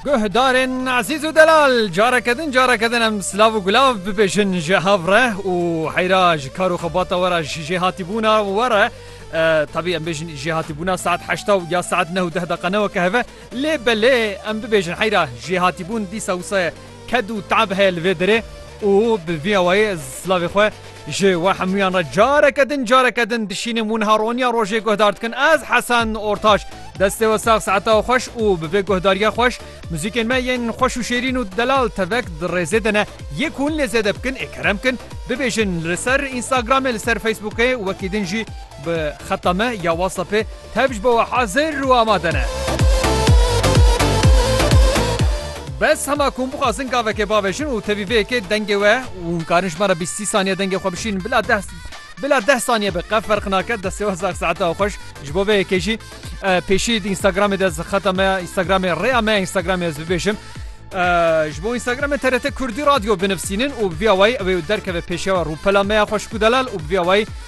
Guhdarên ezîz û delal careke din careke din em silav û gulav bibêjin ji hev re û heyra ji kar û xebata we re ji jêhatîbûna we re tevî em bêjin jêhatîbûna saet heşta û ya saet neh û deh deqa ne weke heve lê belê em bibêjin heyra jêhatîbûn dîsa wisa ye Ked û te'b heye li vê derê û bi vî awayê ez silavê xwe ji we hemûyan re careke din careke din dişînim û niha roniya rojê guhdar dikin ez Hesen Ortaç. Destê we sax se'eta we xweş û bi vê guhdariya xweş muzîkên me yên xweş û şêrîn û delal tevek di rêzê de ne yê ku hûn lê zêde bikin ê kerem bikin bibêjin li ser Instagramê li ser Facebookê û wekî din jî Bi xeta me ya WhatsAppê tev ji bo we hezir û amade ne. Bes hema ku hûn bixwazin gavekê bavêjin û tevî vê yekê dengê we û hûn karin ji me re bîst sî saniye dengê xwe bişînin bila deh bila deh saniye be qe ferq nake destê we sax saeta we xweş ji bo vê yekê jî pêşî di Instagramê de ez xeta me ya Instagramê rêya me ya Instagramê ez bibêjim ji bo Instagramê TRT Kurdî Radyo binivîsînin û bi vîya wayî ew ê derkeve pêşiya we rûpela me ya xweş ku delal û bi vîya wayî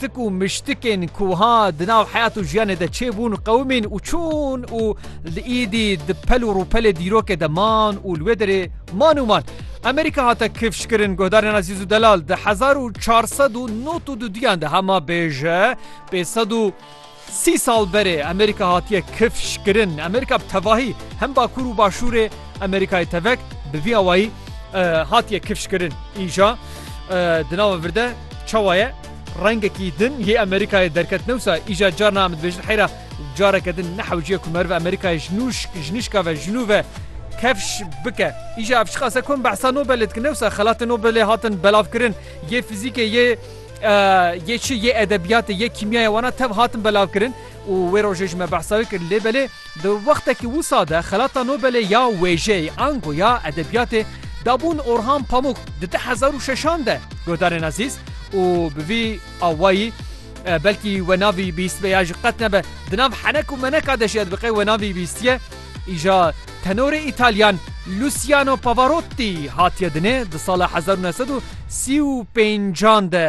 Tik û miştikên ku ha di nav heyat û jiyanê de çêbûn qewimîn û çûn û li îdî di pel û rûpelê dîrokê de man û li wê derê man û man. Amerîka hate kifşkirin guhdarên Azîz û Delal di hezar û çar sed û nod û duduyan de hema bêje pê sed û Sî sal berê Amerîka hatiye kifş kirin. Amerîka bi tevahî hem Bakur û Başûrê Amerîkayê tevek bi vî awayî hatiye kifş kirin. Îja di nava vir de çawa ye? Rengekî din yê Amerîkayê derket newsa îja carna em dibêjin heyra careke din nehewciye ku meriv Amerîkayê ji nûşk ji nîşka ve ji nû ve kefş bike. Îja ev çiqas e ku em behsa Nobelê dikin newsa xelatên Nobelê hatin belavkirin yê fizîkê yê Yê çi yê edebiyatê yê kîmyayê wana tev hatin belavkirin û wê rojê ji me behsa wê kir lê belê di wextekî wisa de xelata Nobelê ya wêjeyê ango ya edebiyatê dabûn Orhan Pamuk di di hezar û şeşan de guhdarên ezîz û bi vî awayî belkî we navî bîstbe ya ji qet nebe di nav henek û meneka de jî ez bi qey we navî bîstiye. Îja tenorê Îtalyan Luciano Pavarotti hatiye dinê di sala hezar û neh sed û sî û pêncan de.